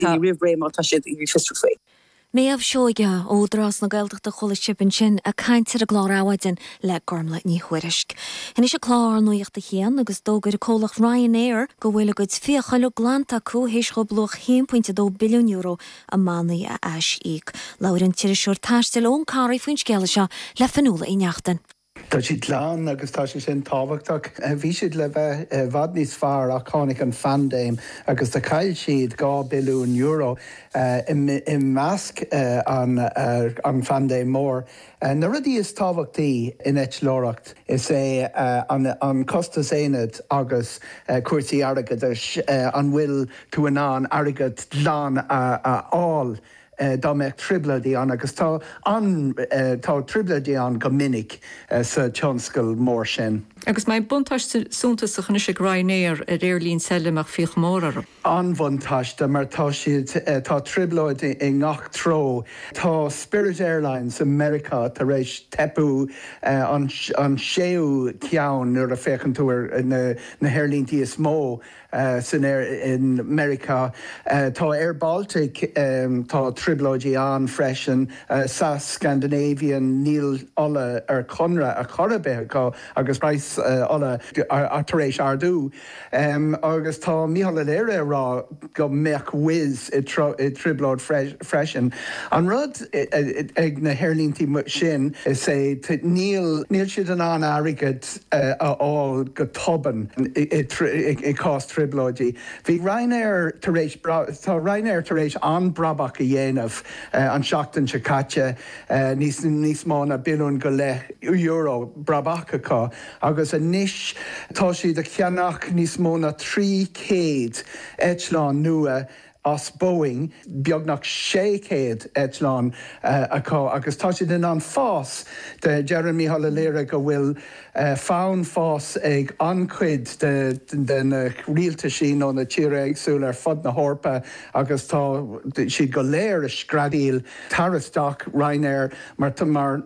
daoine roimh ré má tá siad ag iarraidh fiosrú faoi. Méabh Seoighe, Údarás na Gaeltachta Chuala sibh ansin a caint ar an gclár Adhmhaidin le Gormlaith Ní Thuairisg. Anois ag clár Nuaíocht a hAon agus d'fhógair an comhlacht Ryanair go bhfuil a gcuid fiacha uilig glanta acu th'éis dhóibh luach €1.2 billiún i mbannaí a ais-íoc. Labhair an t-iriseoir taistil Eoghan Corry faoin scéala seo le Fionnuala Uí Neachtain. Tá siad glan agus tá sé sin tábhachtach. Bhí siad le bheith i bhfad níos fearr ach tháinig an phaindéim agus do chaill siad dhá billiún euro. I measc an phaindéim mhóir, na rudaí is tábhachtaí in eitleoireacht, is é an costas aonaid agus cúrsaí airgeadais, an bhfuil tú in ann airgead glan a fháil. dá mbeadh trioblóidí ann, agus tá ann, tá trioblóidí ann go minic sa tionscal mór sin. Agus más ea buntáiste suntasach anois ag Ryanair ar aerlínte eile a mbeadh fiacha móra orthu. An-bhuntáiste mar tá siad, tá trioblóidí i ngach treo. Tá Spirit Airlines i Meiriceá tar éis teipeadh, an séú ceann nuair a féachann tú ar na haerlíntí is mó san aer i Meiriceá. Tá Air Baltic tá trioblóidí ann freisin. SAS Scandinavian níl ola ar conradh ar chor ar bith acu agus praghas ola tar éis ardú. Agus tá Micheál Ó Laoire ag rá go mbeadh Wizz i trioblóid freisin. An rud ag na haerlíntí sin is é níl siad in ann airgead a fháil go tobann i gcás trioblóidí. Bhí Ryanair tar éis, tá Ryanair tar éis an-brabach a dhéanamh an tseachtain seo caite, níos mó ná billiún go leith euro brabach acu agus anois tá siad ag ceannach níos mó ná 300 eitleán nua. as Boeing, beagnach 600 eitleán acu agus tá siad in ann fás de. Deireann Mícheál Ó Laoire go bhfuil fonn fás ag an-chuid de na rialtaisí nó na tíortha éagsúla ar fud na hEorpa agus tá siad go léir ag screadaíl, Tar isteach Ryanair mar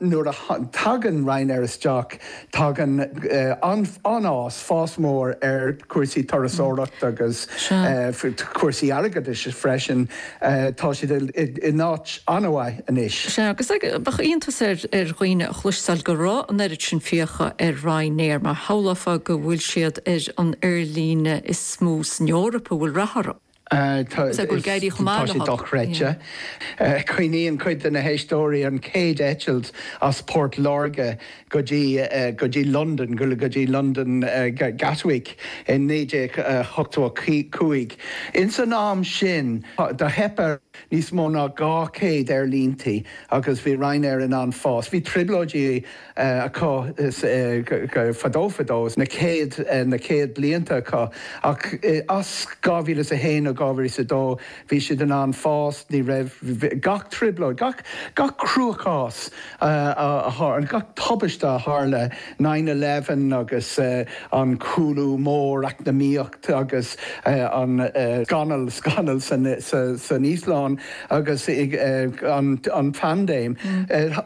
nuair a tagann Ryanair isteach tagann an-fhás, fás mór ar chúrsaí turasóireachta agus cúrsaí airgeadais freisin. Tá siad in áit an-mhaith anois. Sea, agus bheadh iontas ar dhaoine a chloisteáil go raibh an oiread sin fiacha ar Ryanair mar shamhlófá go bhfuil siad ar an aerlíne is mó san Eoraip a bhfuil rath orthu. Is é go bhfuil ag éirí chomh maith leo. Tá sé dochreidte. Cuimhníonn cuid de na héisteoirí an chéad eitilt as Port Láirge go dtí go dtí Londain, go dtí Londain Gatwick i 1985. Insan am sin do theip ar níos mó ná 200 aerlínte agus bhí Ryanair in ann fás. Bhí trioblóidí acu fadó fadó, na chéad na chéad blianta acu, ach as 2001 nó 2002 bhí siad in ann fás, ní raibh gach trioblóid, gach gach cruachás a tharla, gach tubaiste a tharla, nine eleven agus an cúlú mór eacnamaíoch, agus an scamall scamall san Íoslainn agus an phaindéim.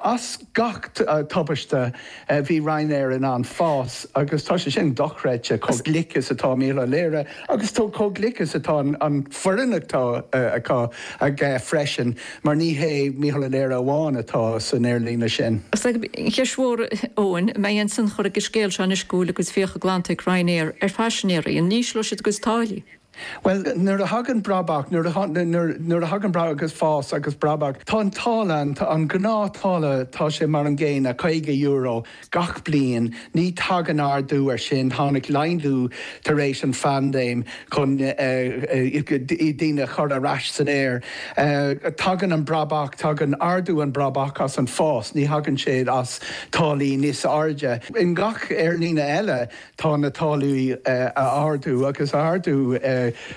As gach tubaiste bhí Ryanair in ann fás agus tá sé sin dochreidte chomh glic is atá Michael O'Leary agus chomh glic is atá an foireann atá acu aige freisin. Mar ní hé Michael O'Leary amháin atá san aerlíne sin. Is é an cheist mhór, Eoin, an mbeidh aon tionchar ag an scéal seo anois go bhfuil a gcuid fiacha glanta ag Ryanair ar phaisinéirí? An n-ísleoidh siad a gcuid táillí? Bhuel, nuair a thagann brabach, nuair a, nuair, nuair a thagann brabach agus fás agus brabach, tá an táille, an gnáth-tháille, tá sé mar an gcéanna, €50. Gach bliain, ní thagann ardú air sin, tháinig laghdú tar éis an phaindéim chun daoine a chur ar ais san aer. Tagann an brabach, tagann ardú an bhrabaigh as an fás, ní thagann sé as táillí níos airde. I ngach aerlíne eile, Tá na táillí ag ardú agus ag ardú,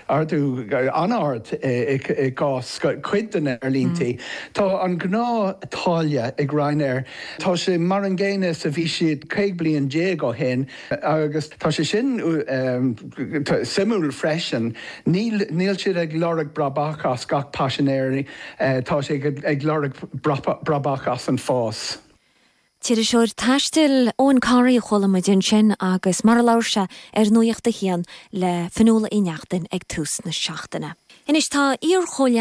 ardú an-ard i gcás cuid de na aerlínte. Tá an gnáth-tháille ag Ryanair, tá sé mar an gcéanna is a bhí siad 15 bliain ó shin agus tá sé sin suimiúil freisin, níl siad ag lorg brabach as gach paisinéir, tá siad ag lorg brabach as an fás. t-iriseoir taistil Eoghan Corry a chuala muid ansin agus mar a labhair sé ar Nuacht a hAon le Fionnuala Uí Neachtain ag tús na seachtaine. Anois tá iar-chomhleá